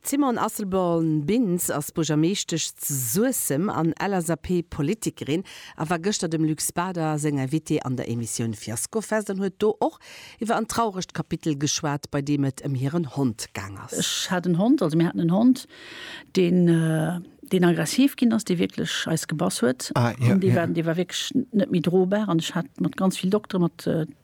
D'Simone Asselborn-Bintz ass Buergermeeschtesch zu Suessem an LSAP-Politikerin a war gëschter dem Luc Spader seng Invitée an der Emissioun Fiaskofest an huet do och iwwer en trauregt Kapitel geschwat, bei deem et ëm hiren Hond gaang ass. Ech hat en Hond, also mir haten en Hond, deen, deen aggressiv ginn ass, dee wierklech eis gebass huet an dee war, dee war wierklech net méi drobar an ech hat mat ganz vill Dokteren, mat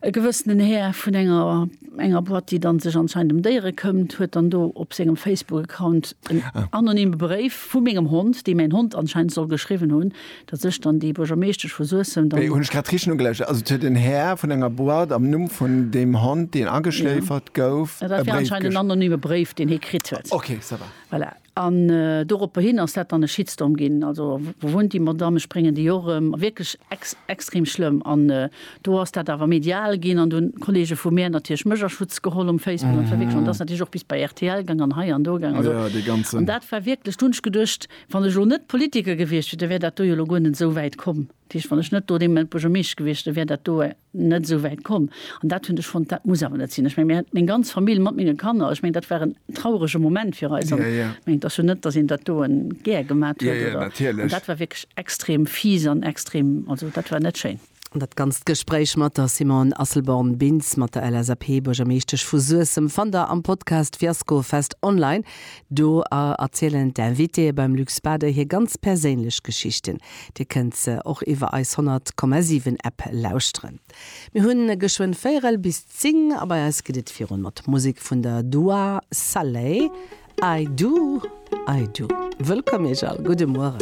E gewëssenen Här vun enger enger Boîte, déi dann sech anscheinend em Déiere këmmt, huet dann do op sengem Facebook-Account en anonyme Bréif vu mengem Hond, dee mäin Hond anscheinend soll geschriwwen hunn, datt ech dann déi Buergermeeschtesch vu Suessem dann. Hunn ech grad richteg nogelauschert? Also et huet en Här vun enger Boîte am Numm vun deem Hond, deen ageschléifert gouf, e Bréif geschriwwen? Dat war anscheinend en anonyme Bréif, deen hie kritt huet. Okay, ça va. Voilà. An doropperhin ass dat dann e Shitstorm ginn, also wou wunnt déi Madamm, ech bréngen déi och erëm, wierklech extrem schlëmm. An do ass dat awer medial ginn an do hunn d'Kolleege vu mär natierlech mech a Schutz geholl um Facebook an verwickelt an dat ass natierlech och bis bei rtl gaang an hei an do gaang. Also an dat war wierklech, do hunn ech geduecht, wann ech elo net Politiker gewiescht wier, da wär dat do jo elo guer net esou wäit komm. Dat heescht, wann ech net do dee Moment Buergermeeschter gewiescht, da wär dat do net esou wäit komm. An dat hunn ech fonnt, dat muss awer net sinn. Ech meng, mir hat meng ganz Famill mat menge Kanner, ech meng, dat war en traurege Moment fir eis. An ech meng, et ass jo net, datt een dat do gär gemat huet. Oder dat war wierklech extrem fies an extrem, also dat war net schéin. An dat ganzt Gespréich mat der Simone Asselborn-Bintz, mat der LSAP-Buergermeeschtesch vu Suessem, fannt der am Podcast Fiasko Fest online. Do erzielen d'Invitéeë beim Luc Spader hir ganz perséinlech Geschichten. Dir kënnt se och iwwer eis 100,7 App lauschteren. Mir hunn geschwënn véierel bis zing a bei eis geet et virun mat Musek vun der Dua Saleh, I Do, I Do. Wëllkomm iech all, gudde Mueren.